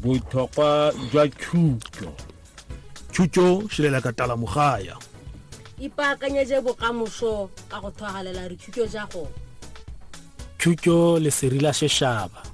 botlhokwa jwa thuto thuto šilela ka tala mogaya ipaakanyetse bokamoso ka go thwagalela dithuto ja go thuto leseri la sešaba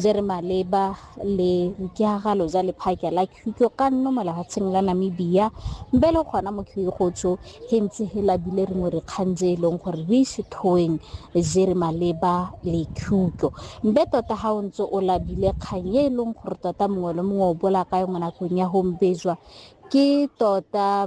je re maleba le boikeagalo ja lephake la khutlo ka nno mo lehatsheng la Namibia mbe le gona mo khuyegotso he ntse he labile rengwe re kgang je e leng gore re ise thoeng je re maleba le khutlo mbe tota ga o ntse o labile kgang e e leng gore tota mongwe le mongwe o bola ka yone nakong ya gombejwa ke tota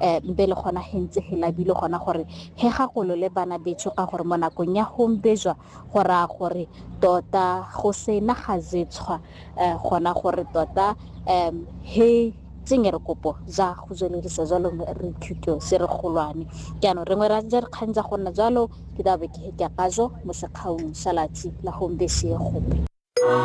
eh, mbe le gona he ntse he labile gona gore he gagolo le bana betsho ka gore mo nakong ya gombejwa go raya gore tota go sena ga zetshwa eh, gona gore tota um he tsenge re kopo za go tsweledisa jalo re thuto se re golwane jaanong rengwe ra ja re kgang tsa go nna jalo ke dabe ke he ke akajo mo sekgaong sa latsi la gombesego